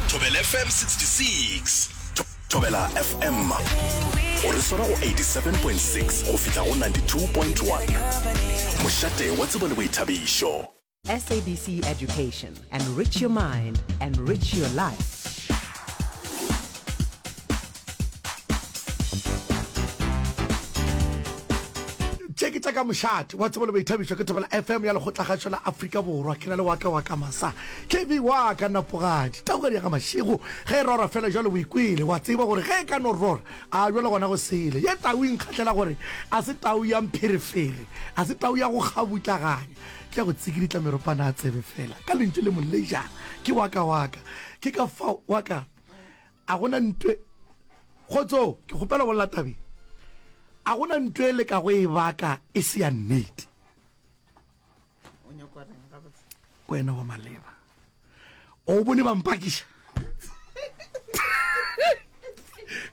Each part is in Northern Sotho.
Thobela FM 66. Thobela FM o re swara go 87.6 go fihla go 92.1. Mošate wa tsebo le boithabišo. SABC Education. Enrich your mind, enrich your life. tše ke tša ka mošate wa tsebolo baithabišwa ke thobela fm ya lekgotlagašo la afrika borwa ke na le waka wa ka masa kb wa ka napogadi taugadi ya ga mašego ge e rora fela jalo boikwele wa tseba gore ge e ka no rora a jalo gona go sele ye tau e nkgatlhela gore a se tau ya mpherefere a se tau ya go kgabutlaganya ke ya go tsikiditla meropana a tsebe fela ka lentšu le molejana ke waka waka ke ka fa waka A go na ntw. Kgotso, ke kgopela go lla tabeng. A go na ntw e le ka go e baka e se ya nnete. O nyakwa reng gabotse? Wena wa maleba. O bone ba mpakiša?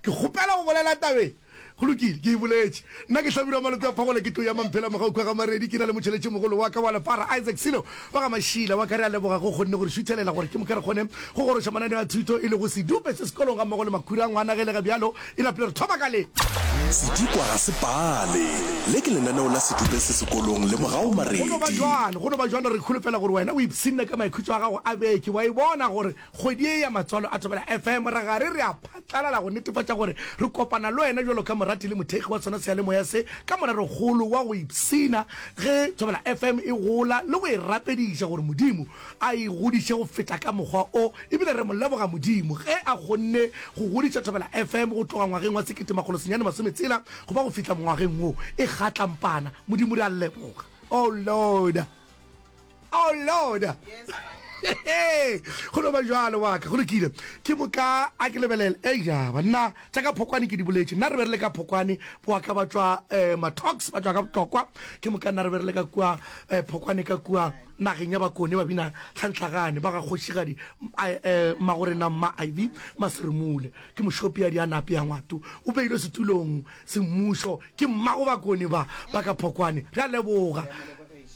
Ke kgopela go bolela tabeng. Go lokile, ke e boletše. Nna ke hlabirwa malope a phagola, ke tlo ya Mamphela mogau kwa ga Maredi, ke na le motšheletšimogolo wa ka wa lefara, Isaac Silo wa ga Mašila. Wa ka re a leboga ge o kgonne go re šuthelela gore ke moka re kgone go goroša mananeo a thuto e lego sedupe se sekolong gammogo le makhura a ngwana. Ge e le ge bjalo, e napile re thoma ka le. Sedikwa ga se pale. Le ke lenaneo la sedupe se sekolong le mogau Maredi. Go no ba bjalo, go no ba bjalo. Re kholofela gore wena o ipshinne ka maikhutšo a gago a beke, wa e bona gore Kgwedi ye ya Matswalo a Thobela FM, ra gare re a phatlalala go netefatša gore re kopana le wena bjalo ka morati le mothekgi wa sona seyalemoya se, ka morero-kgolo wa go ipshina ge Thobela FM e gola le go e rapediša gore Modimo a e godiše go feta ka mokgwa o. E bile re mo leboga Modimo ge a kgonne go godiša Thobela FM go tloga ngwageng wa sekete makgolo senyane masome tshela go ba go fihla mongwageng wo e kgatlampana. Modimo re a leboga. Oh Lord! oh lord go no ba jalo waka go lokile ke moka a ke lebelele e jaba nna tša ka phokwane ke di boletše nna re be re le ka phokwane boaka ba tšwa um matox ba tšwa ka botlokwa ke moka nna re be re le ka kua um phokwane ka kua nageng ya bakone ba bina tlhantlhagane ba ga kgošigadi um magorena mma iv maseremule ke mošopi ya di a nape ya ngwato o beilwe setulong semmušo ke mmago bakone ba ba ka phokwane re a leboga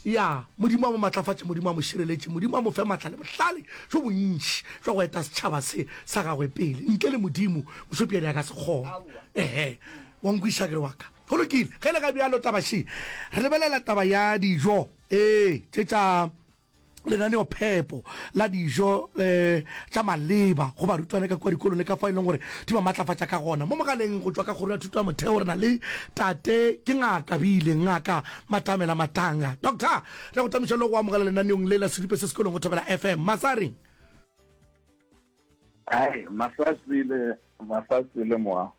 Ya, Modimo a mo matlafatše, Modimo a mo šireletše, Modimo a mo fe matla le bohlale bjo bontši bja go eta setšhaba se sa Gagwe pele. Ntle le Modimo, mošopiadi a ka se kgone. Ehe. Wa nkwešiša ke re, Wa ka. Go lokile. Ge e le ge bjalo, taba še re lebelela taba ya dijo, ee, tše tša lenaneophepo la dijo tša maleba go barutwana ka kua dikolong le ka fao e leng gore di ba matlafatša ka gona. Mo mogaleng go tšwa ka Kgoro ya Thuto ya Motheo, re na le Tate, ke Ngaka Bile, Ngaka Matamela Matanga. Doctor, re a go tamiša le go amogela lenaneong le la Siripe se sekolong go Thobela FM. Masareng. Ai, masasi le masasi le moa.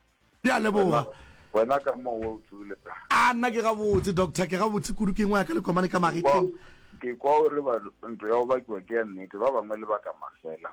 Ke a leboga. Wena ka mo o tsule ka. A nna ke gabotse doctor, ke gabotse kudu ke ngwa ka le komane ka magetleng. Ke kwa o re ba ntlo ya go bakiwa ke ya nnete, ba bangwe le baka mafela.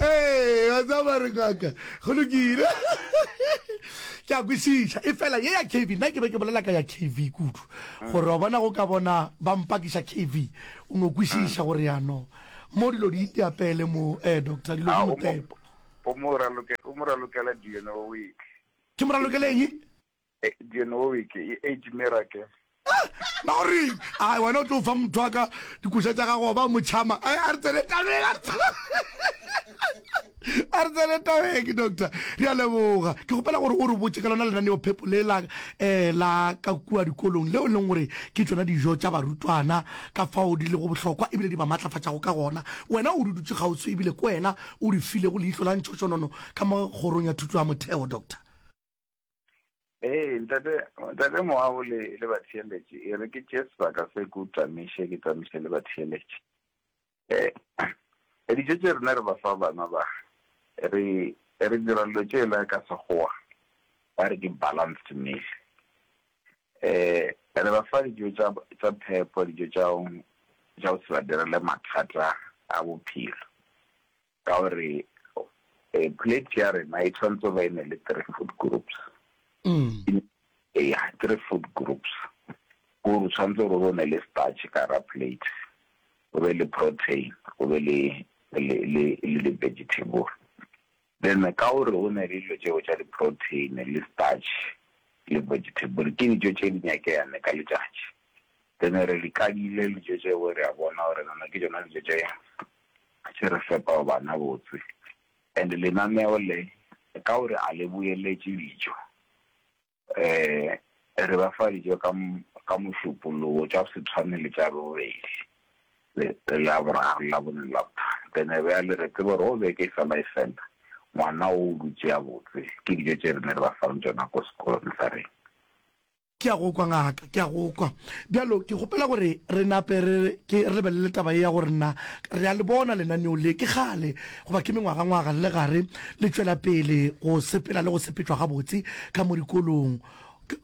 ee wa tsaba re ngaka go lokile ke a kwešiša e fela ye ya kv nna ke be ke bolela ka ya kv kudu gore wa bona go ka bona ba mpakiša kv o no kwešiša gore yanong mo dilo di iteapele mo um doctor dilo di motepo o mo ralokela dna week ke mo ralokele eng E, Genowic, e, Age Miracle. Ah, ba go reng? Ai, wena o tlo fa motho wa ka dikoša tša gago wa ba mo tšhama. Ai, a re tsene tabeng, a re tsene- a re tsene tabeng, doctor. Re a leboga. Ke kgopela gore o re botše ka lona lenaneo phepo le la um la ka kua dikolong leo e leng gore ke tšona dijo tša barutwana ka fao di lego bohlokwa ebile di ba maatlafatšago ka gona. Wena o di dutše kgauswi ebile ke wena o di filego leihlo la ntšhošonono ka mo Kgorong ya Thuto ya Motheo, Doctor. Ee, ntate, ntate Moago le, le batheeletše, e re ke tše sebaka se ke o tamiše, ke tamiše le batheeletše. Eh, eh, dijo tše rena re ba fa bana ba, re, re dira lo tše la ka Sekgowa, ba re ke balanced meal. Eh, re ba fa dijo tša, tša phepo, dijo tša, tša go se ba direle mathata a bophelo. Ka gore plate ya rena e tshwanetse ba ene le three food groups. Eya, three food groups. Ko re tshwanetse gore o ne le starch ka ra plate, o be le protein, o be le le le le vegetable. Then ka gore o ne le dilo tšeo tša di protein le starch le vegetable ke dijo tše di nyakeyane ka letšatši. Then re di kadile dijo tšeo re a bona gore nana ke tšona dijo tše a tše re fepa bana botse and lenaneo le ka gore a le boeletše dijo um re ba fa dijo ka ka mošupologo tša go se tshwane le tša bobedi le la boraro le la bone le la botharo then e be ya le re tsebe gore go beke e fela e fela ngwana o dutše a botse ke dijo tše rena re ba fang tšona ko sekolong sa rena. Ke a go kwa, ngaka, ke a go kwa. Bjalo ke kgopela gore re nape re, ke, re lebelele taba ye ya gore na re a le bona lenaneo le, ke kgale, goba ke mengwagangwaga le gare, le tšwela pele go sepela le go sepetšwa gabotse ka mo dikolong.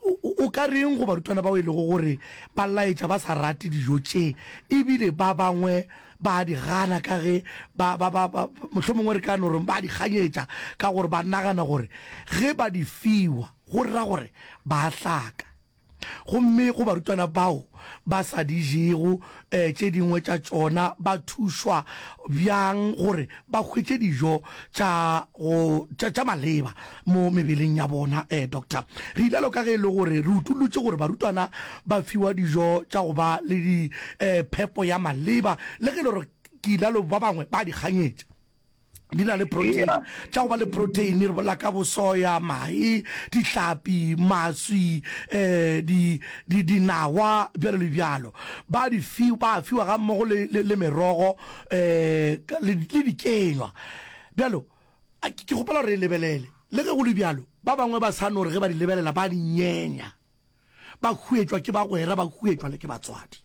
O, o, o ka reng go barutwana bao e lego gore ba laetša ba sa rate dijo tše, e bile ba bangwe ba a di gana ka ge ba, ba, ba, ba, mohlomongwe re ka no re ba a di kganyetša ka gore ba nagana gore ge ba di fiwa, go ra gore ba a hlaka, gomme go barutwana bao ba sa di jego tše dingwe tša tšona, ba thušwa bjang gore ba hwetše dijo tša go, tša, tša maleba mo mebeleng ya bona? Ee, Doctor. Reilalo ka ge e le gore re utollotše gore barutwana ba fiwa dijo tša go ba le di, phepo ya maleba, le ge e le gore ke ilalo ba bangwe ba a di kganyetša. di na le protein yeah. tša go ba le protein re bola ka bosoya mae dihlapi maswi eh di di dinawa bjalo le bjalo ba di fi ba fiwa ga mmogo le le, le merogo eh le di kenywa bjalo ke gopela re lebelele le ge go le bjalo ba bangwe ba sa no re ge ba di lebelela ba di nyenya ba huetšwa ke bagwera ba huetšwa le ke batswadi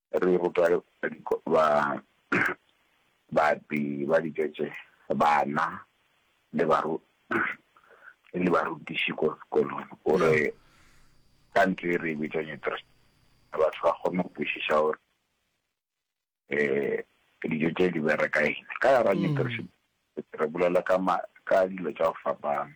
Re rutwa ba bapi ba ditšetše, bana le baru le barutiši ko sekolong. O re ka ntho e re e bitšang interest batho ba kgone go kwešiša gore um dijo tše di bereka eng. Ka yona re bolela ka dilo tša go fapana.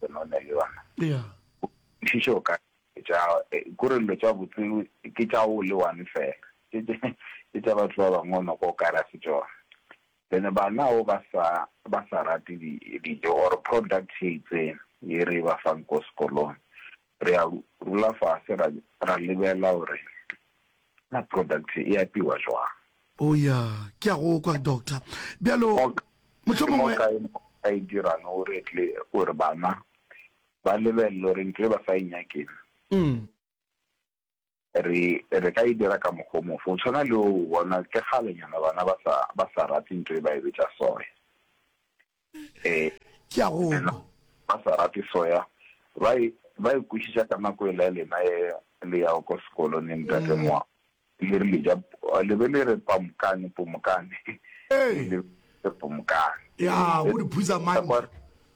Benone le yona kwešišo o ka tša kore dilo tša botse ke tša o le one fela ke tša batho ba bangwe o noko o ka ra se tšona then bana o ba sa ba sa rate dijo or product e itseng e re ba fang ko sekolong Re a dula fase ra ra lebela gore na product e apewa jwang. Oh ya, ke a go kwa doctor. Bjalo mohlomongwe. Ke mo kae mo ka e dirang gore tle gore bana ba lebelele gore ntho e ba sa e nyakeng. re, re ka e dira ka mokgwa o mofe? O tshwana le o, bona, ke kgalenyana bana ba sa, ba sa rate nto e ba e betša soya. E, Ke a go kwa. ba sa rate soya, ba e, ba e kwešiša ka nako e la lena e le yago ko sekolo ne, ntate Moa, le rile ja, le be le re pamukane, pomokane, Ee. le, le pomokane. Ya, go di phuza mantha.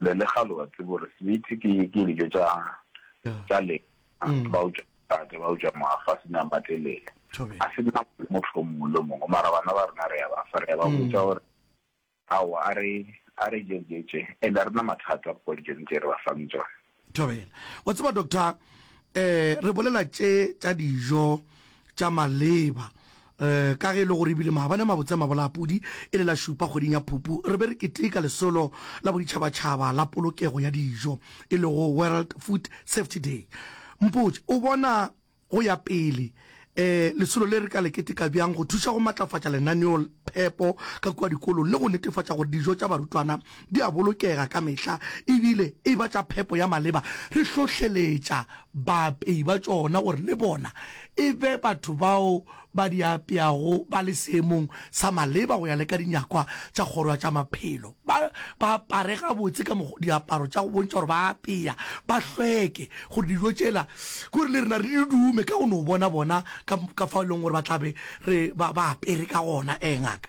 le le ga lo tsebo re sweet ke ke dijo tša tša le mm. ba utswa tate ba utswa mafa se na matelele a se na motho mongwe le mongwe mara bana ba rena re ya ba fa re ya ba mm. botsa gore ao a re a re jejetse and a rena mathata ko dijong tse re ba fang tsone Thobela. Wa tseba doctor, um re bolela tše tša dijo tša maleba um ka ge e le gore ebile maabane a mabotse a mabolapudi e le la šupa kgweding ya Phupu re be re keteka lesolo la boditšhabatšhaba la polokego ya dijo e lego World Food Safety Day. Mpotše, o bona Go ya pele, lesolo le re ka le keteka bjang go thuša go matlafatša lenaneo phepo ka kua dikolong le go netefatša gore dijo tša barutwana di a bolokega ka mehla e bile e ba tša phepo ya maleba, re hlohleletša baapei ba tšona gore le bona e be batho bao ba di apeago ba le seemong sa maleba go ya le ka dinyakwa tša Kgoro ya tša Maphelo. Ba, ba apare gabotse ka mokgwa, diaparo tša go bontšha gore ba apea, ba hlweke, gore dijo tšela, gore le rena re di dume ka go no bona bona ka, ka fao e leng gore ba tla be re, ba, ba apere ka gona. Ee, ngaka.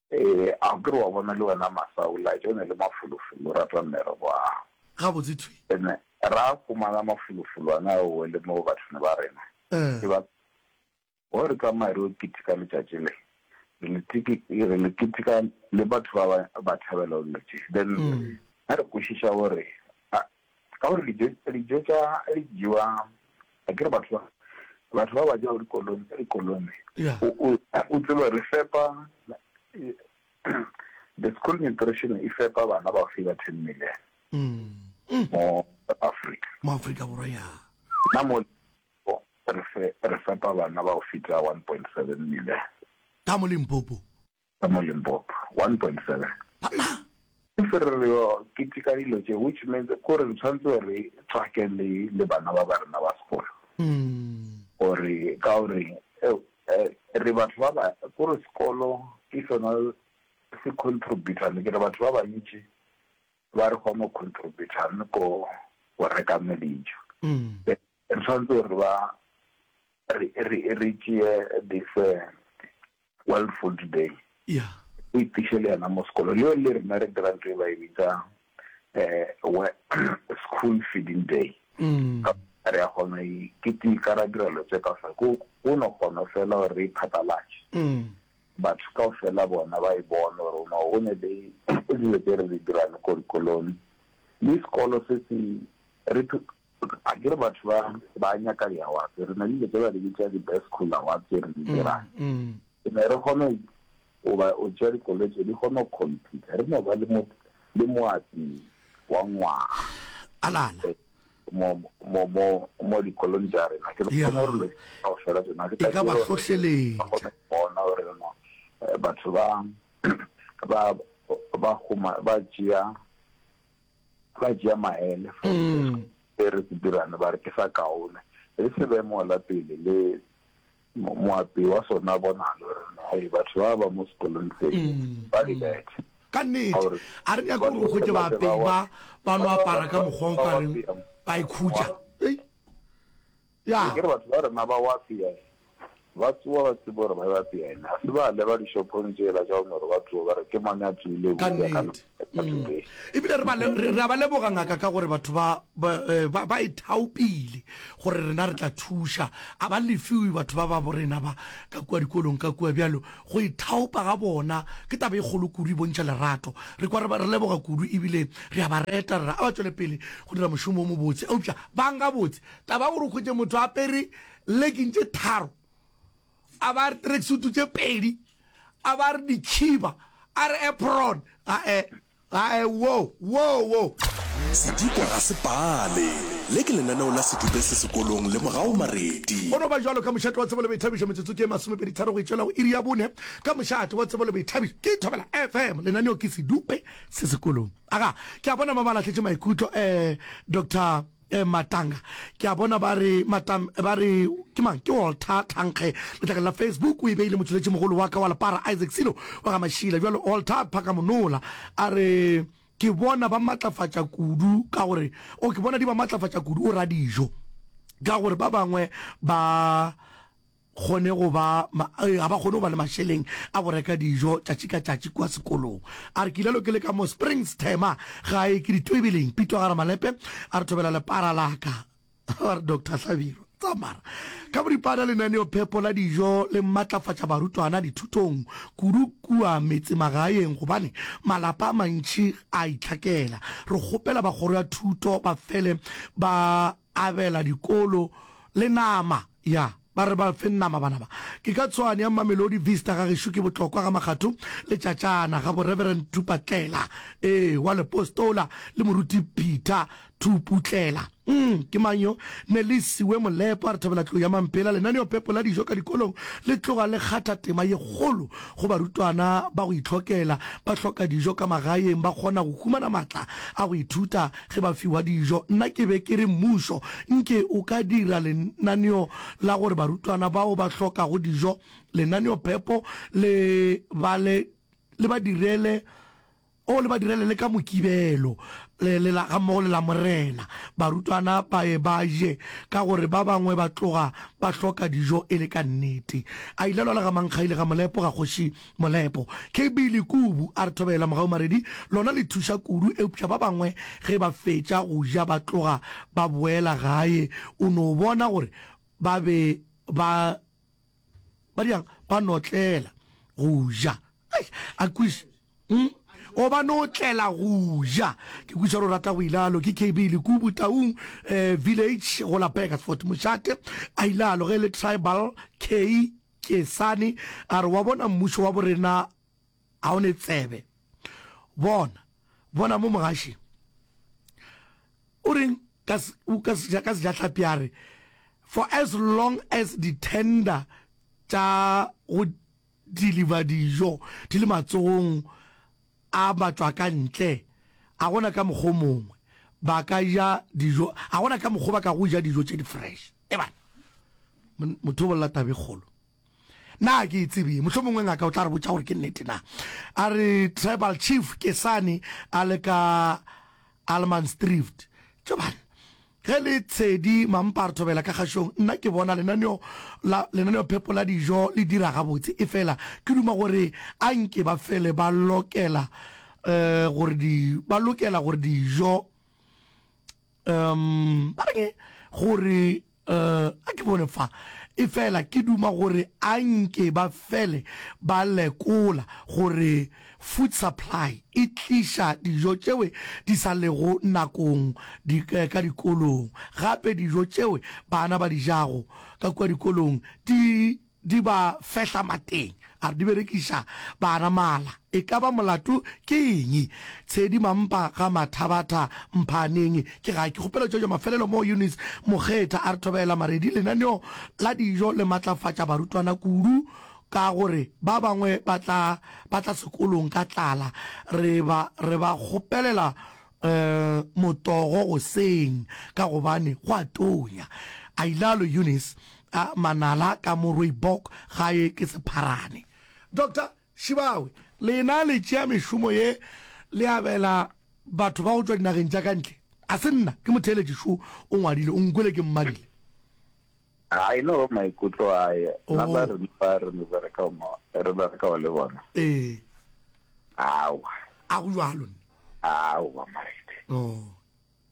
Ee, a o ke re wa bona le wena masa o laetša o ne le mafolofolo o rata mmere bwang? Gabotse thwi. Re ne ra humana mafolofolwana ao o le mo bathong ba rena. Ke ba go re tsamaye re yo ketika letšatši le. Re le tiki re le ketika le batho ba ba ba thabela o letše. Then ha re kwešiša o re Ka gore dijo, dijo tša di jewa, a ke re batho ba, batho ba ba jago dikolong tša dikolone. Yeah. O, o, o tsebe re fepa, the school nutrition e fepa bana ba fee ba ten million. Mm. Mm. Mo Africa. Mo Africa Borwa, ya. Na mo, re fe, re fepa bana ba go feta one point seven million. Ka mo Limpopo. ka mo Limpopo, 1.7. Ba mang? Ke se re re keteka dilo tše, which means ko re tshwanetse re tswake le le bana ba ba rena ba sekolo. Gore ka o reng re batho ba ba ko re sekolo ke sona se contributor le ke re batho ba bantši ba re kgona go contributor le ko go reka me dijo. Re tshwanetse re ba re re re tšee this World Food Day yeah. o itiše le yena mo sekolo le le rena re dira ntho e ba e bitsa um school feeding day mm. re ya kgona ke tika ra dira lo tse ka fela ko o no kgona fela gore re iphathalatše mm. batho ka fela bona ba e bone gore o no o ne le dilo tse re di dirang ko dikolong le sekolo se se re Akere batho ba ba nyaka di awards, re na le dilo tse ba di bitsa di best school awards tse re di mm, dirang. Mm. Re ne re kgona go ba o tšea dikoloi tse di kgona go compete. Re no ba le mo le moatsi wa ngwaga. Alala. Eh, mo mo mo mo dikolong tsa rena ke re kgona gore ka go fela tsena ke ka ba hlohleletsa bona gore no eh, batho ba ba ba goma ba tšea ba tšea maele fa se re se dirane ba re ke sa kaone re se be mola pele le moapi wa sona bonalo re hey batho ba ba mo sekolong se ba re bethe ka nnete a re nyaka gore go ke baapei ba ba no apara ka mokgwa o ka reng ba ikhutša Bjang? Ke re batho ba rena ba wa pea e, ba tsowa ba tsebe gore ba ewa pea e, na se ba leba dishopong tšela tša Omoro ba tsowa ba re ke mang a tsoile eupša ka Kannete. leboka Mm. batho be. Ebile re ba le- re- re a ba leboga, Ngaka, ka gore batho ba ba eh, ba- ba e thaopile gore rena re tla thuša. A ba lefiwe batho ba ba bo rena ba ka kua dikolong ka kua bjalo. Go e thaopa ga bona ke taba e kgolo kudu, e bontšha lerato. Re kwa re ba re leboga kudu ebile re a ba reta, re re a ba tšwele pele go dira mošomo o mobotse. Eupša bang gabotse Taba gore o hwetše motho a apere legging tše tharo a ba re tracksuit tše pedi a ba re dikhiba a re apron gae gae wo wo wo Sedikwa ga se pale. Le ke lenaneo la Sedube se sekolong le Mogau Mareti. Go no ba jwalo ka mošate wa Tsebo le Boithabišo metsotso ke ye masomepedi tharo go itšwela go iri ya bone ka mošate wa Tsebo le Boithabišo ke Thobela FM lenaneo ke Sedube se sekolong. Aga ke a bona ba ba lahletše maikutlo eh Doctor Eh Matanga ke a bona ba re matam ba re ke mang ke Walter Tlhankge letlakeng la Facebook o e beile motšweletši mogolo wa ka wa lepara Isaac Silo wa ga Mašila bjalo Walter Phakamonola a re ke bona ba matlafatša kudu ka gore o ke bona di ba matlafatša kudu o radijo ka gore ba bangwe ba kgone go ba, ga ba kgone go ba le mašeleng a go reka dijo tšatši ka tšatši kua sekolong. A re, Ke ile lo ke le ka mo Springs thema gae ke ditoibeleng, Pitwa ga re malepe a re thobela lepara la ka. Ba re, Doctor Hlabirwa, tsamara ka boripana lenaneophepo la dijo le matlafatša barutwana dithutong kudu kua metsemagaeng gobane malapa a mantši a itlhakela. Re kgopela ba kgoro ya thuto ba fele ba abela dikolo le nama ya ba re ba fe nama bana ba ke ka tshwane ya Mamelodi Vista ga gešo ke botlokwa ga Makgatho le Tšatšana ga bo Reverend Thupatlela ee wa Lepostola le Moruti Peter Thuputlela um ke mang yo ne le siwe Molepo a re thabela tlou ya Mampela lenaneo pepo la dijo ka dikolong le tloga le kgatha tema ye kgolo go barutwana ba go itlhokela ba hloka dijo ka magaeng ba kgona go humana matla a go ithuta Ge ba fiwa dijo, nna ke be ke re mmušo nke o ka dira lenaneo la gore barutwana bao ba hlokago dijo, lenaneo phepo le ba le le ba direle oh, le ba direle le ka Mokibelo le le la gammogo le Lamorena, barutwana ba ye ba je ka gore ba bangwe ba tloga ba hloka dijo e le ka nnete. A ile lwa le ga Mankgaile ga Molepo ga Kgoši Molepo. KB Lekubu a re thobela mogaumaredi lona le thuša kudu eupša ba bangwe ge ba fetša go ja ba tloga ba boela gae o no bona gore ba be ba ba dirang ba notlela go ja. Eish! A kweša umm o ba notlela go ja. Ke kweša gore o rata go ilalo ke KB Lekubu Taung eh village go la Burgersfort Mošate a ilalo ge e le tribal K. Kesane a re, Wa bona, mmušo wa borena ga o ne tsebe. Bona, bona mo mogašeng. O reng ka, ka, seja, ka sejahlapi a re, For as long as di-tender tša go deliver dijo di le matsogong A batšwakantle, a go na ka mokgwa o mongwe ba ka ja dijo, a go na ka mokgwa ba ka go ja dijo tše di fresh? Ebana motho o bolela tabe kgolo. Na ke e tsebee? Mohlho mongwe ngaka o tla re botša gore ke nnete na. A re tribal chief ke sane a le ka Almansdrift. Tšobana, Ge le tshedi mamparthobela ka kgašong, nna ke bona lenaneo la lenaneophepo la dijo le dira gabotse. Efela ke duma gore a nke ba fele ba lokela gore di, ba lokela gore dijo, ba reng gore, a ke bone fa, efela ke duma gore a nke ba fele ba lekola gore. Food supply e tliša dijo tšeo di sa lego nakong di ka dikolong. Gape dijo tšeo bana ba di jago ka kua dikolong di di ba fehla mateng, a re di berekiša bana mala. E ka ba molato ke eng? Tshedi Mampa ga Mathabatha Mphaaneng ke ga ke kgopela tšwetšo mafelelo moo Eunice Mokgetha a re thobela maredi lenaneo la dijo le matlafatša barutwana kudu ka gore ba bangwe ba tla ba tla sekolong ka tlala re ba re ba kgopelela motogo goseng ka gobane go a tonya. A ile a lo Eunice a manala ka mo Rooibok gae ke sepharane. Doctor Shibawe, lena le tšea mešomo ye le abela batho ba go tšwa dinageng tša ka ntle? A se nna ke motheeletši šo o ngwadile o nkwele ke mmadile. I know maikutlo a ye na ba re ba re mo bereka mo re bereka wa le bona eh awa a go jalo awa marete oh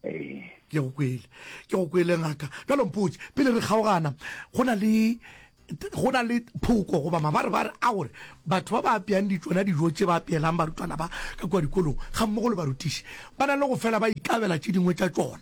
eh ke go kwele ke go kwele ngaka ka lompotse pele re kgaogana go na le go na le phoko goba mabare bare a gore batho ba ba apeyang ditsona dijo tse ba apeelang barutwana ba ka kwa dikolong ga mmogo le barutiši ba na le go fela ba ikabela tse dingwe tsa tsona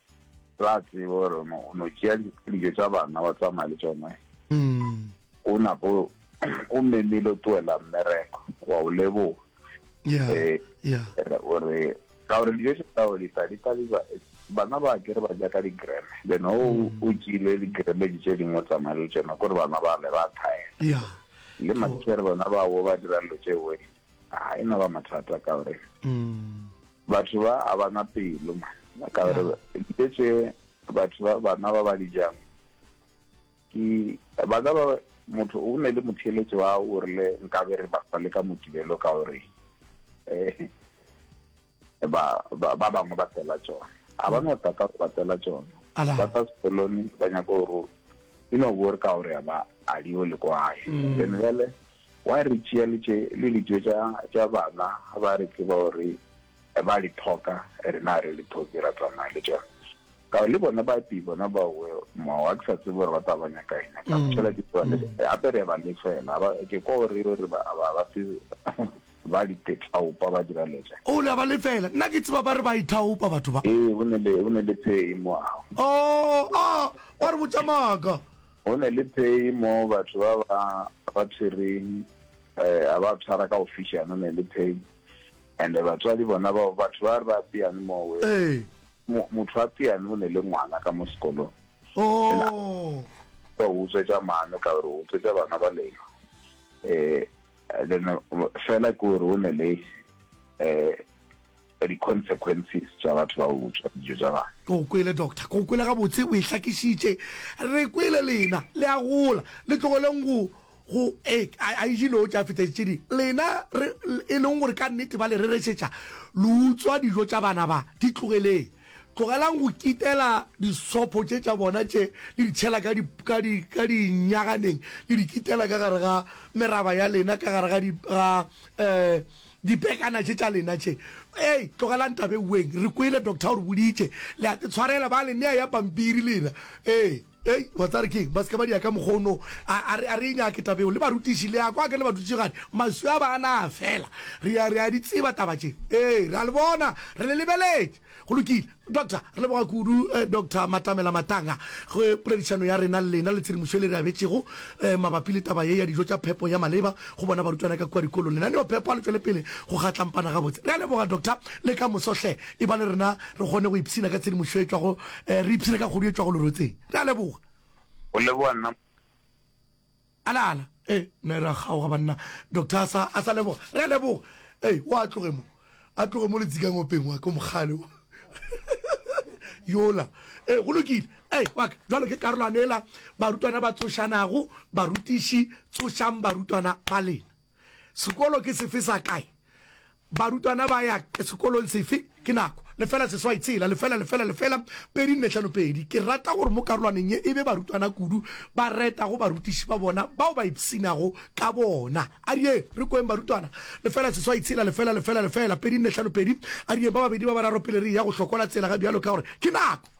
Ra tsebe gore o no- o no tšea di- dijo tša bana wa tsamaya le tšone o nako o memile o tloela mmereko wa o leboga ya Eh, ya Re- o re ka gore dijo tše tao di tla di tla di ba- bana ba ke re ba ja ka digreme then o o tšile digreme di tše dingwe o tsamaya le tšona kore bana ba le ba thaela ya le matšhere bona bao ba dirang lo tšeoe a e no ba mathata ka gore mm. batho ba a bana pelo ma ka gore dilo tse batho ba bana ba ba dijang ke ba ka ba motho o ne le motheletso wa o rile nka be re ba le ka motibelo ka gore um ba ba ba bangwe ba tela tsona a ba no tata go ba tela tsona Ala. ba tsa sekolone ba nyaka gore e no bo re ka gore ya ba a dio le kwae Mm. then jale wa re tšea le tše le dijo tša tša bana ga ba re tseba gore eh, ba le thoka rena re le thoki ra tsamaya le tsona ka le bona ba pi bona ba we mo wa ke sa tsebe gore ba tla ba nyaka eng ka Mm. tšela ke tsone ape re ba le fela ba ke ko re re ba ba ba se Ba ditaopa ba dira letša. O la ba lefela. Nna ke tseba ba re ba ithaopa batho ba. Ee, go ne le, go ne le phei mo ao. Oh, a, wa re botša maaka. Go ne le phei mo batho ba ba, ba tshwereng, eh, a ba tshwara ka go fišana, go ne le phei. And batswadi bona bao, batho ba re ba apeane mo we. Ee. Mo, motho a apeane o ne le ngwana ka mo sekolong. Ena, Oh. ba utswetša mano, ka gore o utswetša bana ba lena. Eh. then fela ke gore o ne le um di-consequences tša batho ba utswa dijo tša bana ke go kwele doctor ke go kwele gabotse o e hlakišitše re kwele lena le a gola le tlogeleng go go e a ejileo tša feta tše di lena e leng gore ka nnete ba le reresetša lo utswa dijo tša bana ba di tlogeleng Tlogelang go kitela disopho tše tša bona tše, le di tšhela ka, ka, ka dinyaganeng, le di kitela ka gare ga meraba ya lena, ka gare ga, di, ga um dipekana tše tša lena tše. Ee, tlogelang taba e weng. Re kwele, Doctor o re boditše. Le a te tshwarela, ba le nea ya pampiri lena. Ee. Hei, wa tseba re ke eng? Ba se ke ba di ya ka mokgwa o no. A, a re, a re e nyake taba eo. Le barutiši, le a kwa ke le badutšegadi, maswi a bana a fela. Re a, re a di tseba taba tše. Ee, re a le bona. Re le lebeletše. Go lokile. Doctor, re leboga kudu, eh, Doctor Matamela Matanga, go poledišano ya rena le lena le tshedimošo e le re abetšego, eh, mabapi le taba ye ya dijo tša phepo ya maleba go bona barutwana ka kua dikolong. Lenaneo-phepo a le tšwele pele go kgatlampana gabotse. Re a leboga, Doctor, le ka moso hle. E ba le rena re kgone go ipshina ka tshedimošo e tšwago, re ipshine ka kgodu e tšwago lerotseng. Re a leboga. Go leboga nna. Ala, ala. Ee, ne ra kgaoga, banna. Doctor a sa, a sa leboga. Re a leboga. Ee, o a tloge mo. A tloge mo letsikang openg wa ka o mogale wo. Yola. Ee, go lokile. Ee, wa ka. Jwale ke karolwane yela barutwana ba tsošanago, barutiši, tsošang barutwana ba lena. Sekolo ke sefe sa kae? Barutwana ba ya sekolong sefe? Ke nako. Lefela seswai tshela, lefela, lefela, lefela, pedi nne hlano pedi. Ke rata gore mo karolwaneng ye e be barutwana kudu ba reta go barutiši ba bona bao ba ipshinago ka bona. A re yeng re kweng barutwana. Lefela seswai tshela, lefela, lefela, lefela, pedi nne hlano pedi. A re yeng ba babedi ba bararo pele re eya go hlokola tsela ga bjalo ka gore ke nako.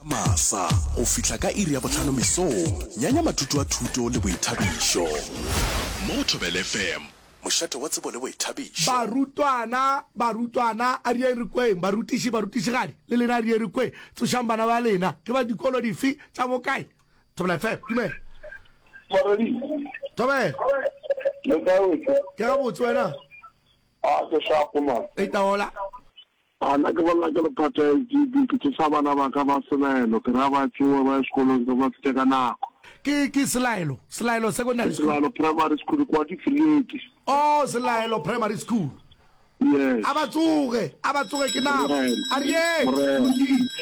masa go fihla ka iri ya botlhano mesong nyanya mathuto a thuto le boithabišo mo go thobele fm mošate wa tsebo le boithabišo Barutwana, barutwana, a di eng re kweng. Barutiši, barutišigadi, le lena a di eng re kweng. Tsošang bana ba lena. Ke ba dikolo dife? Tša bo kae? Thobela FM, dumela. Moradi. Thobela. Le kae wetše? Ke gabotse wena? A ke shapo man. Itaola. A na ke bolela ke lephatho ya SGB, ke tsosa bana ba ka ba selaelo, ke ra ba tšowe ba ye sekolong se ba fete ka nako. Ke, ke Selaelo, Selaelo Secondary Ke School? selaelo primary school, kwa Difileti. Oh, Selaelo Primary School. Yes. A ba tsoge, a ba tsoge ke nako. Morena, A re yeng? morena,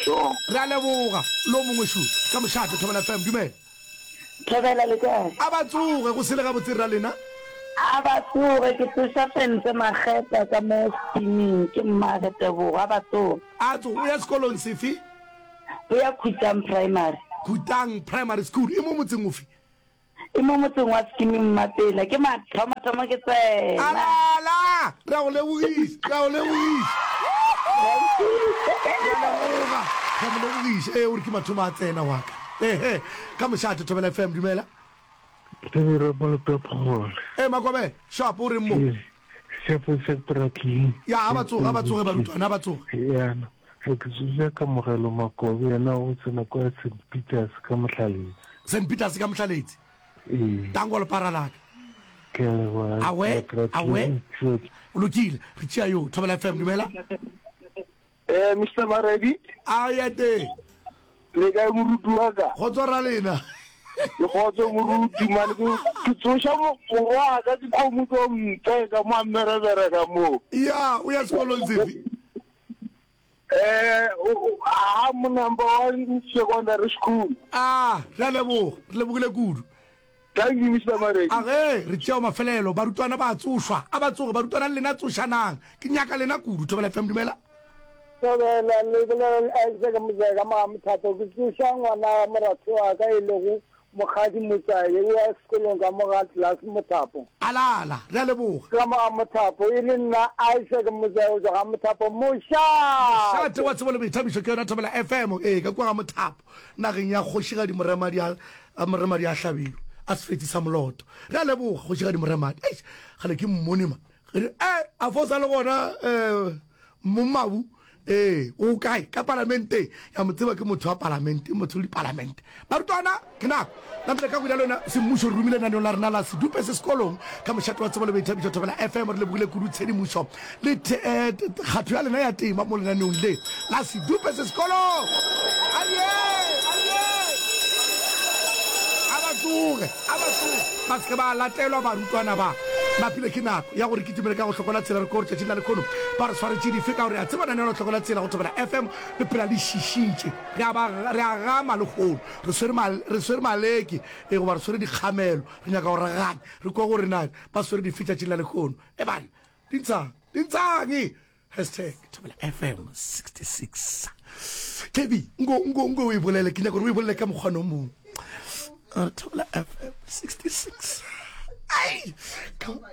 sure. Re a leboga. Lo mongwe, sure. Ka mošate, Thobela FM, dumela. Thobela le kae? A ba tsoge, go sele gabotse rra lena. A ba tsoge, ke tsoša Fentse Makgeta ka mo steaming, ke mmage Tebogo. A ba tsoge. A tsoge, o ya sekolong sefe? O ya Khutang Primary. Khutang Primary School, e mo motseng ofe? E mo motseng wa Skeeming Mmapela, ke mathomathomo ke tsena. A lala! Re a go lebogiša, re a go lebogiša. Re a leboga, re a mo lebogiša. Ee, o re ke mathomo a tsena wa ka. Ehe, ka mošate, Thobela FM, dumela. Thobela Malope Phogole. Ee, Makobela, Shapo, o reng mo? Ee, Shapo sa Pratleng. Ya, ha ba tsoge, ha ba tsoge barutwana, ha ba tsoge. Yana, re ke tsoja Kamogelo Makobe, yena o tsena kwa St. Peters ka Mohlaletse. St. Peters ka Mohlaletse? Ee. Tango le para laka. Ke a leboha. Awe, awe. Lokile, re tšea yo. Thobela FM, dumela. Eh, Mister Maredi, a ya teng le kae moruti wa ka? go tswa ra lena Ke kgotse moruti mane ke ke tsoša mo- morwa ka ke kgomo tso mpe ka mo a mmerebere ka moo. ya o ya sekolong sefe Eh, o- o- ha mo number one secondary school. a re a leboga re lebogile kudu Thank you Mister Maredi. A ge re tšeao mafelelo barutwana ba tsošwa a ba tsoge barutwana le lena tsošanang ke nyaka lena kudu Thobela FM dumela. Thobela le bolela le Isaac Muzeka Magamothato ke tsoša ngwana wa moratho wa ka e lego Mokgadi Motswale o ya sekolong ka mo ga Glass Mothapo. Alala re a leboga. Ka mo ga Mothapo e le nna Isaac Motswale go tswa ga Mothapo Mošate. Mošate wa tsebo le boithabišo ke yona Thobela FM ee ka kua ga Mothapo. Nageng ya kgošigadi Moremadi a, a Moremadi a hlabirwe, a sefetsi sa moloto. Re a leboga, Kgošigadi Moremadi. Eish, kgale ke mmone ma. Re re, Eh, a fa o sa le gona, eh, Mmabu? Ee, o kae? Ka Palamenteng. Ya mo tseba, ke motho wa Palamente, motho le Dipalamente. Barutwana, kna! Namile ka go dalo na semmušo re rumile lenaneo la rena la sedupe se sekolong ka mošate wa tsebo le boithabišo Thobela FM re lebogile kudu tshedimošo le kgatho ya lena ya tema mo lenaneong le la sedupe se sekolong aye aye a ba tsoge a ba tsoge ba seke ba latelwa barutwana ba napile ke nako ya gore ke timele ka go hlokola tsela re ko tšatšing la lekhono ba re tshwaretše dife ka gore a tseba nanelo hlokola tsela go Thobela FM le phela le šišitše re a gama lekgono re swere ma, re swere maleke, e, goba re swere dikgamelo, re nyaka go raganya, re kwa gore na ba swere dife tšatšing la lekgono. E bana, dintshang, dintshang! Hashtag Thobela FM 66. Kebi, nko, nko, nko o e bolele, ke nyaka gore o e bolele ka mokgwana o mongwe. Thobela FM 66. Ai!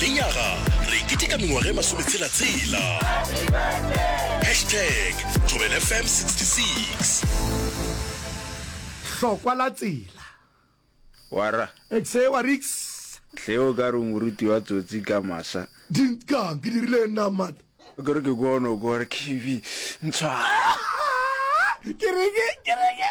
Lenyaga re keteka mengwaga e masometshela-tshela. Hashtag thobelfm 66. Hlokwa la tsela. Wara. Exe wa riks. Hle o ka re o moruti wa tsotsi ka masa. Dinkang ke dirile nna mata. O kere ke kono ko re kibi ntshwa. Ke reke ke reke.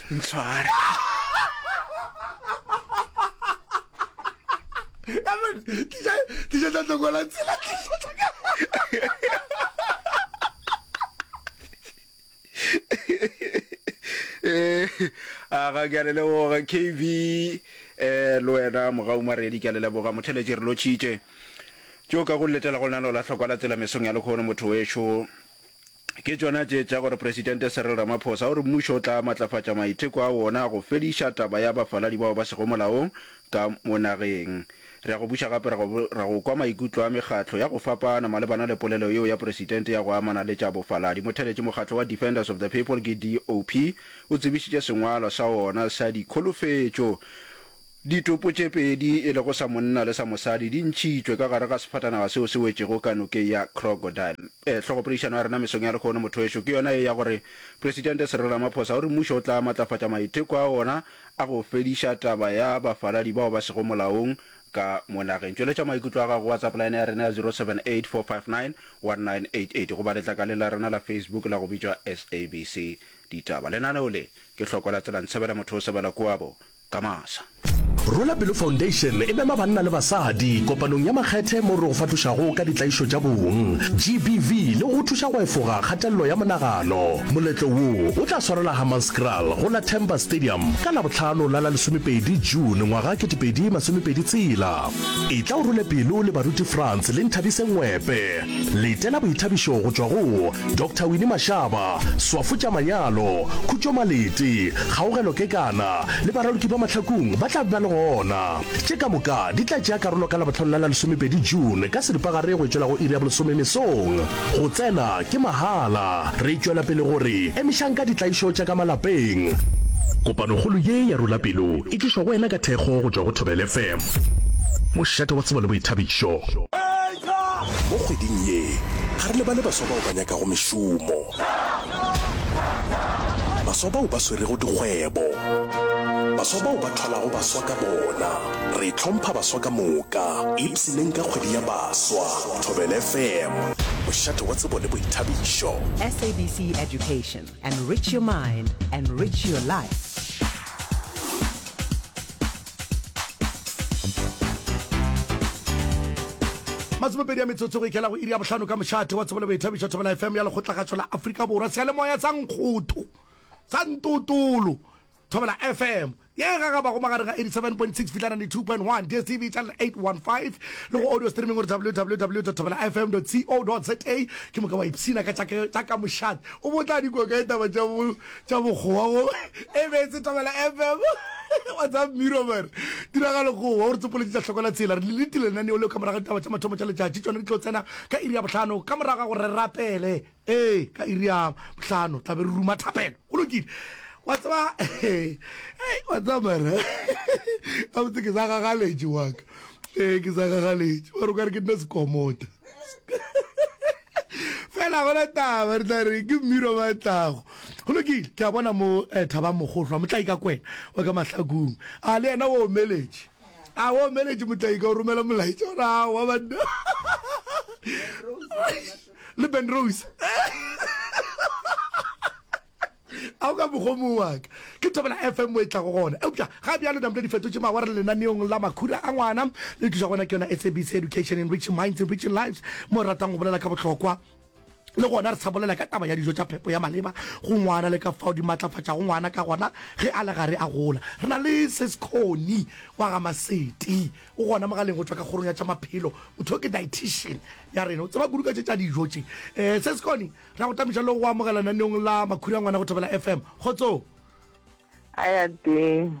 ntshware tliša tla tlokola tsela tliša eh, a ga ke a le leboga kv eh le wena mogau maredi ke a le leboga motheletše re lotšhitše tšeo ka go letela go lena lola tlhokwa la tsela mesong ya lekgono motho wešo Ke tšona tše tša gore Presidente Cyril Ramaphosa o re mmušo o tla matlafatša maitheko a wona a go fediša taba ya bafaladi bao ba sego molaong ka mo nageng. Re a go buša gape re go re go kwa maikutlo a mekgatlo ya go fapana malebana le polelo yeo ya Presidente ya go amana le tša bofaladi. Motheletši mokgatlo wa Defenders of the People ke DOP o tsebišitše sengwalwa sa wona sa dikholofetšo Ditopo tše pedi e lego sa monna le sa mosadi di ntšhitšwe ka gare ga sefatanaga seo se wetšego ka Nokeng ya Crocodile. E, hlogopoledišano ya rena mesong ya lehono, mothowešu, ke yona ye ya gore Presidente Cyril Ramaphosa o re mmušo o tla matlafatša maitheko a wona a go fediša taba ya bafaladi bao ba sego molaong ka mo nageng. Tšweletša maikutlo a gago go WhatsApp line ya rena ya 0784591988 goba letlakaleng la rena la Facebook la go bitšwa SABC Ditaba. Lenaneo le ke hloko la Tselantshabela Mothosebela Koabo ka masa. Rwela Pelo Foundation e mema banna le basadi kopanong ya makgethe moo re go fahlošago ka ditlaišo tša bong, GBV, le go go thuša go efoga kgatelelo ya monagano. Moletlo wo o tla swarelwa Hammanskraal go la Temba Stadium ka Labohlano la la lesomepedi June ngwaga kete pedi masomepedi tshela. Etla o rwele pelo le baruti Frans le Nthabise Ngwepe. Letela boithabišo go tšwa go Doctor Winnie Mashaba, swafo tša manyalo, Khutšo Malete, Kgaogelo Kekana le baraloki ba Mahlakung ba tla be ba le gona. Tše ka moka di tla tšea karolo ka Labohlano la la lesomepedi June ka seripagare go e tšwela go iri ya bolesome mesong. Go tsena ke mahala. Re tšwela pele go re emišang ka ditlaišo tša ka malapeng. Kopanokgolo ye ya Rula Pelo e tlišwa go wena ka thekgo go tšwa go Thobela FM, mošate wa tsebo le boithabišo. Mo kgweding ye, ga re lebale baswa bao ba nyakago mešomo, baswa bao ba swerego dikgwebo, baswa bao ba thwalago baswa ka bona. Re hlompha baswa ka moka, ipshineng ka kgwedi ya baswa. Thobela FM, mošate wa tsebo le boithabišo. SABC Education, Enrich your mind, enrich your life. masomepedi ya metsotso go ikela go iri ya bohlano ka mošate wa tsebo le boithabišo thobela fm ya lekgotlagatšo la aforika borwa seyalemoya sa nkgoto sa ntotolo thobela fm ye e gagabago magareng ga 87.6 fitlha 92.1 dstv channel 815 le go audio streaming gore www thobela fm co za ke moka wa ipshina ka tša ka mošate o botla dikoka e taba tša tša bokgowa go e be se tobela fm whatsapp miro mere tiragalo go wa o re tsopoletše tša hlokola tsela re lelete lenaneo leo ka morago ditaba tša mathomo tša letšatši tšone di tlo tsena ka iri ya bohlano ka morago ga gore re rapele ee ka iri ya bohlano tlabe re ruma thapelo go lokile wa tseba wa tseba mere ka botse ke sa gagaletše waka ee ke sa gagaletše wa re o ka re ke nna sekomota fela gona taba re tla re ke mmiro ba tlago go lokile ke a bona mo eh, thaba mogohlwa motlaika kwena wa ka mahlakong a le yena o omeletše a o omeletše motlaika o romela molaetša gore a wa banna le ben rose Ao ka mogomo wa ka, ke Thobela FM mo e tlago gona. Eupša ga bjalo namle di fetotše mawara le lenaneong la Makhura a Ngwana. Le tliša gona ke yona SABC Education, Enriching Minds, Enriching Lives, mo re ratang go bolela ka bohlokwa le gona re sa bolela ka taba ya dijo tša phepo ya maleba go ngwana le ka fao di matlafatšago ngwana ka gona ge a le gare a gola. Re na le Sis Connie wa ga Maseti, o gona mogaleng go tšwa ka kgorong ya tša maphelo. Motho yo ke dietician ya rena, o tseba kudu ka tše tša dijo tše. Eh, Sis Connie, Ra go tametša le go amogela naneong la Makhurangwana go Thobela FM. Kgotsong. A ya teng.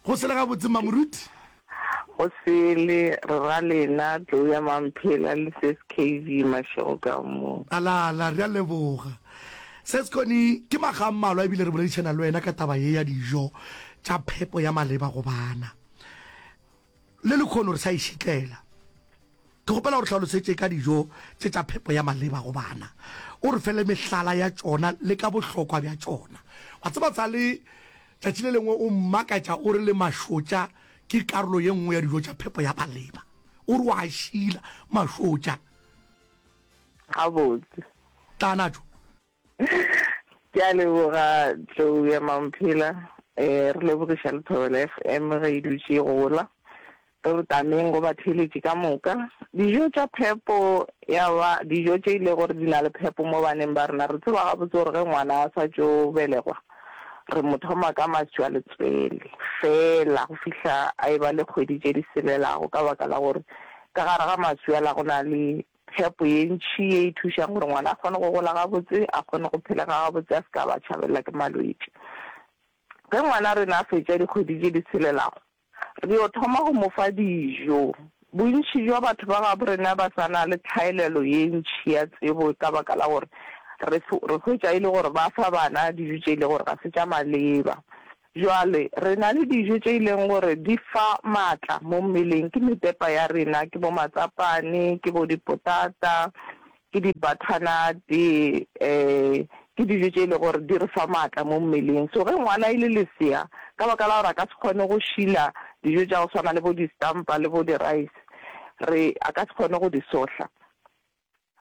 Go sele gabotse mma moruti. Go sele re ra lena Gloria Mamphela le Ses KV Mashego ka mo. Ala ala re a leboga. Ses Koni ke maga a mmalwa ebile re boledišana le wena ka taba ye ya dijo tša phepo ya maleba go bana. Le lekhono re sa e šitlela. Ke kgopela o re hlalosetše ka dijo tše tša phepo ya maleba go bana, o re fe le mehlala ya tšona le ka bohlokwa bja tšona. Wa tseba Tsale, tšatši le lengwe o mmakatša o re le mašotša ke karolo ye nngwe ya dijo tša phepo ya maleba. O re o a šila mašotša. Gabotse. Tla a na tšo. Ke a leboga tlou ya mamphela um re lebogiša le thobela FM ge e dutše e gola re re tameng go batheeletši ka moka dijo tša phepo ya ba dijo tše e le gore di na le phepo mo baneng ba rena re tseba gabotse gore ge ngwana a sa tšo belegwa re mo thoma ka maswi a letswele fela go fihla a e ba le kgwedi tše di selelago ka baka la gore ka gare ga maswi a la go na le Phepo ye ntši ye e thušang gore ngwana a kgone go gola gabotse, a kgone go phelega gabotse, a se ka a ba tšhabelela ke malwetši. Ge ngwana rena a fetša dikgwedi tše di tshelelago, re yo thoma go mo fa dijo. Bontši bja batho ba gabo rena ba sa na le tlhaelelo ye ntši ya tsebo ka baka la gore re re hwetša e le gore ba fa bana dijo tše e le gore ga se tša maleba. Bjale, re na le dijo tše e leng gore di fa maatla mo mmeleng, ke mepepa ya rena, ke bo matsapane, ke bo dipotata, ke di-butternut-e, ke dijo tše e lego gore di re fa maatla mo mmeleng. So ge ngwana e le lesea, ka baka la gore a ka se kgone go šila dijo tša go swana le bo di-stampa le bo di-rice, re, a ka se kgone go di sohla.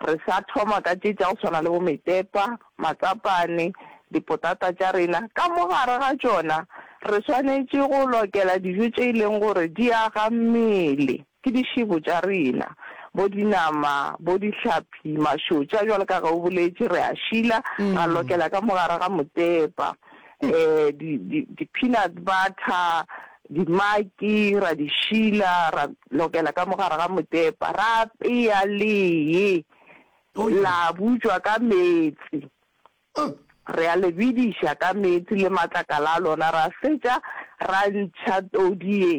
Re sa thoma ka tše tša go swana le bo metepa, matsapane, dipotata tša rena. Ka mo gare ga tšona re swanetše go lokela dijo tše e leng gore di aga mmele, ke dišebo tša rena, bo dinama, bo dihlapi, mašotša, bjalo ka ge o boletše, re a šila, ra lokela ka mo gare ga motepa. di, di, di peanut butter, dimaki, ra di šila, ra lokela ka mogare ga motepa, ra peya lee, oh, la butšwa ka metsi. Oh. re a le bidiša ka meetse le matlakala a lona ra fetša ra ntšha todi ye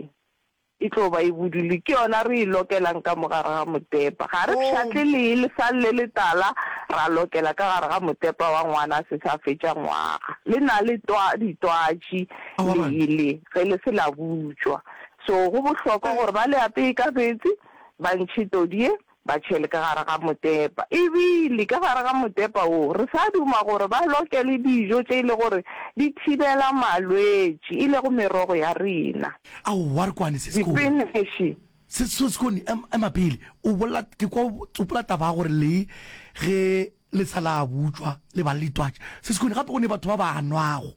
E tlo ba e budule, ke yona re e lokelang ka mo gare ga motepa. Ga re pšhatle lee lesang le letala, ra lokela ka gare ga motepa wa ngwana a se sa fetša ngwaga. Le na le twa, ditwatši lee le, ge le se la butšwa. So go bohlokwa gore ba le apee ka meetse, ba ntšhe todi ye, Ba tšhele ka gare ga motepa. E bile ka gare ga motepa wo, re sa duma gore ba loke le dijo tše e le gore di thibela malwetši, e lego merogo ya rena. Aowa, re kwane, Sesko. Dipinexi. Sesko, Sesko, ema pele. O bolela, ke kwa o tsopola taba ya gore le ge le sa la butšwa le ba le ditwatši. Sesko, gape go ne batho ba ba nwago.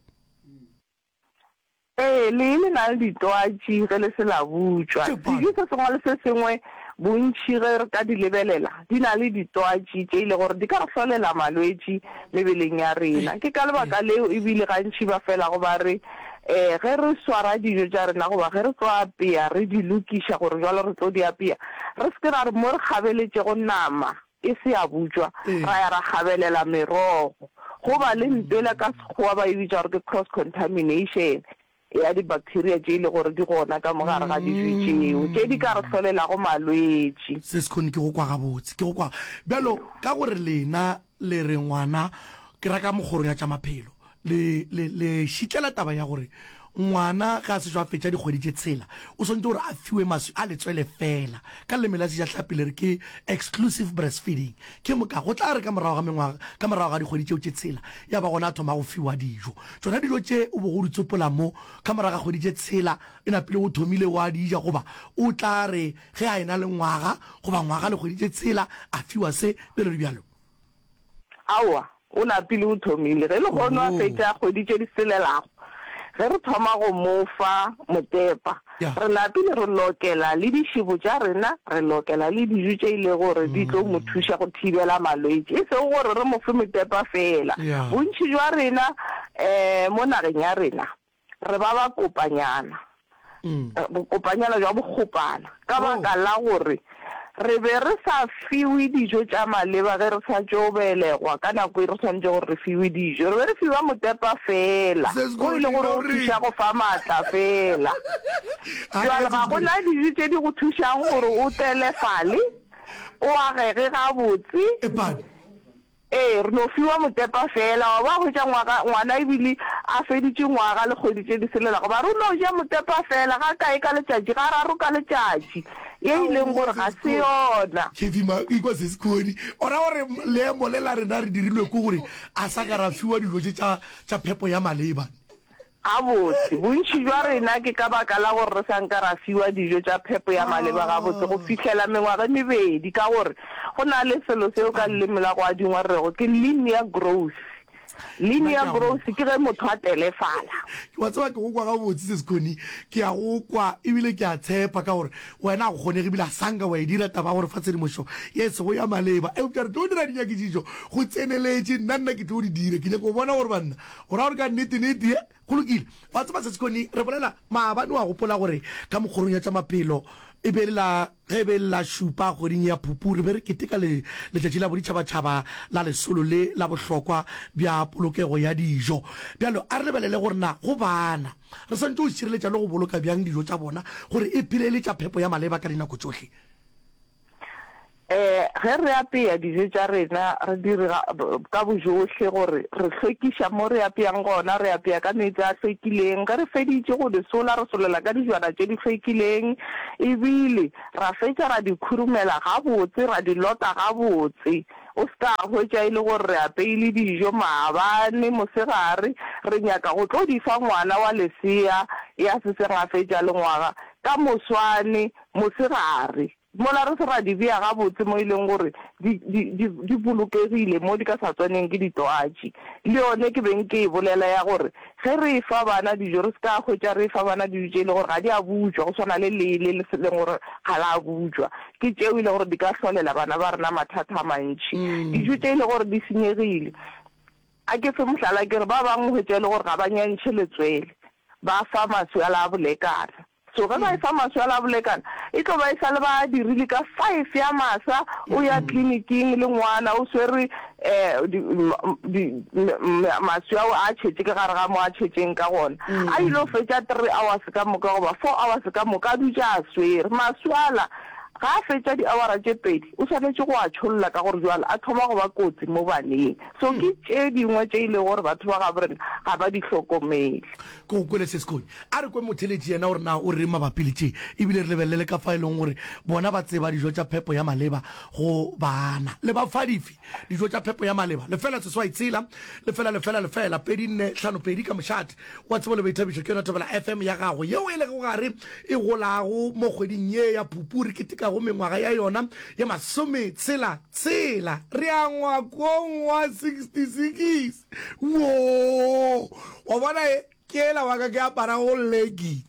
Ee, lee le na le ditwatši ge le se la butšwa. Dijo se sengwe le se sengwe bontši ge re ka di lebelela di na le ditwatši tše e le gore di ka re hlolela malwetši mebeleng ya rena. Ke ka lebaka leo e bile gantši ba felago ba re ge re swara dijo tša rena goba ge re tlo apea re di lokiša gore bjalo re tlo di apea re se ke ra re mo re kgabeletšego nama E se ya butšwa, ra ya ra gabelela merogo. Go ba le ntwela, ka Sekgowa ba e bitša gore ke cross contamination, ya di-bacteria tše e lego gore di gona ka mo gare ga dijo tšeo, tše di ka re hlolelago malwetši. Se sekhone ke go kwa gabotse, ke go kwa. Bjalo ka gore lena le re ngwana ke ra ka mokgoro ya tša maphelo, le, le, le šitlela taba ya gore ngwana ge a sešo a fetša dikgwedi tše tshela o swanetše gore a fiwe maswi a letswele fela ka leleme la sejahlapi le re ke exclusive breastfeeding ke moka go tla re ka morago ga mengwaga ka morago ga dikgwedi tšeo tše tshela ya ba gona a thoma go fiwa dijo tšona dijo tše o bo go di tsopola mo ka morago ga kgwedi tše tshela e napile o thomile wa di ja goba o tla re ge a ena le ngwaga goba ngwaga le kgwedi tše tshela a fiwa se bjalo le bjalo Aowa, o lapile o thomile. Ge lehono a fetša kgwedi tše di selelago, ge re thoma go mo fa motepa, re lapile re lokela le dišebo tša rena, re lokela le dijo tše e lego gore di tlo mo thuša go thibela malwetši, e sego gore re mo fe motepa feela. Bontši bja rena um mo nageng ya rena, re ba ba kopanyana, bokopanyana bja bokgopana, ka baka la gore re be re sa fiwe dijo tša maleba ge re sa tšo belegwa ka nako e re swanetšego gore re fiwe dijo. Re be re fiwa motepa feela, wo e lego gore o thuša go fa maatla feela. Bjale ga go na dijo tše di go thušago gore o tselefale, o agege gabotse. Ee, re no fiwa motepa feela. Wa bona, hwetša ngwaga, ngwana e bile a feditše nywaga le kgwedi tše di se lelago, ba re o no ja motepa feela, ga kae ka letšatši, ga raro ka letšatši, ye e leng gore ga se yona. Kathy ma ikwa se se kgoni o ra gore leemo le la rena re dirilwe ke gore a sa ka ra fiwa dilo tše tša, tša phepo ya maleba. Gabotse, bontši bja rena ke ka baka la gore re sa nka ra fiwa dijo tša phepo ya maleba gabotse go fihlela mengwaga e mebedi ka gore go na le selo seo ka leleme la go adingwa re rego ke linear growth. Linear growth ke ge motho a telefala. Wa tseba ke go kwa gabotse, Sis Connie, ke a go kwa ebile ke a tshepa ka gore wena ga go kgonege ebile ga sa nka wa e dira taba ya gore fa tshedimošo ye e sego ya maleba. Eupša re tlo dira dinyakišišo go tseneletše, nna nna ke tlo di dira. Ke nyaka go bona gore banna O ra gore ka nnete-nnete? Ye, go lokile. Wa tseba, Sesi Connie, re bolela, maabane, wa gopola gore ka mokgorong ya tša maphelo, e be e le la, ge e be e le la šupa kgweding ya Phupu, re be re keteka le, Letšatši la Boditšhabatšhaba la Lesolo le la Bohlokwa bja Polokego ya Dijo. Bjalo, a re lebelele gore na go bana re swanetše go šireletša le go boloka bjang dijo tša bona gore e phele e le tša phepo ya maleba ka dinako tšohle. Ge re apea dijo tša rena, re dira ka bojohle gore re hlwekiša mo re apeang gona. Re apea ka meetse a hlwekileng. Ge re feditše go di sola, re solela ka dijwana tše di hlwekileng e bile ra fetša ra di khurumela gabotse, ra di lota gabotse. O se ka hwetša e le gore re apeile dijo maabane, mosegare, re nyaka go tlo di fa ngwana wa lesea ya seseng a fetša le ngwaga ka moswane. Mosegare, mola re se ra di bea gabotse mo e leng gore di, di, di, di bolokegile, mo di ka sa tswaneng ke ditwatši. Le yone ke beng ke e bolela ya gore ge re e fa bana dijo re se ka hwetša re e fa bana dijo tše e lego gore ga di a butšwa, go swana le lee le le se leng gore ga la butšwa. Ke tšeo e lego gore di ka hlolela bana ba rena mathata a mantši. Dijo tše e lego gore di senyegile, a ke fe mohlala, ke re ba bangwe o hwetša e le gore ga ba nyantšhe letswele, ba fa maswi a la bolekana. So ge ba efa maswela a bolekana, e tlo ba e sa le ba a dirile ka five ya masa o ya tleliniking le ngwana o swerwe um maswe ao a tšhetse ke gare ga mo a tšhetseng ka gona. A ile go fetša three hours ka moka goba four hours ka moka a dutše a swere. Maswala ga a fetša di-hour-a tše pedi o swanetše go a tšholla ka gore jwale a thoma go ba kotsi mo baneng. So ke tše dingwe tše e lego gore batho ba gabo rena ga ba di hlokomele. Ko kwele se sekonye. A re kwe motheletši yena gore na o reng mabapi le tše e bile re lebelele le ka fa e lego gore bona ba tseba dijo tša phepo ya maleba go baana. Le ba fa dife dijo tša phepo ya maleba? Lefela seswai tshela, lefela, lefela, lefela, pedi, nne, hlano, pedi, ka mošate wa tsebo le boithabišo ke yona Thobela FM ya gago yeo e lego gare e golago mo kgweding ye ya Phupu re ketekago mengwaga ya yona ye masome tshela tshela. Re angwa kong wa 66. Woo! Wa bona e? Ke ela wa ka ke aparago legi.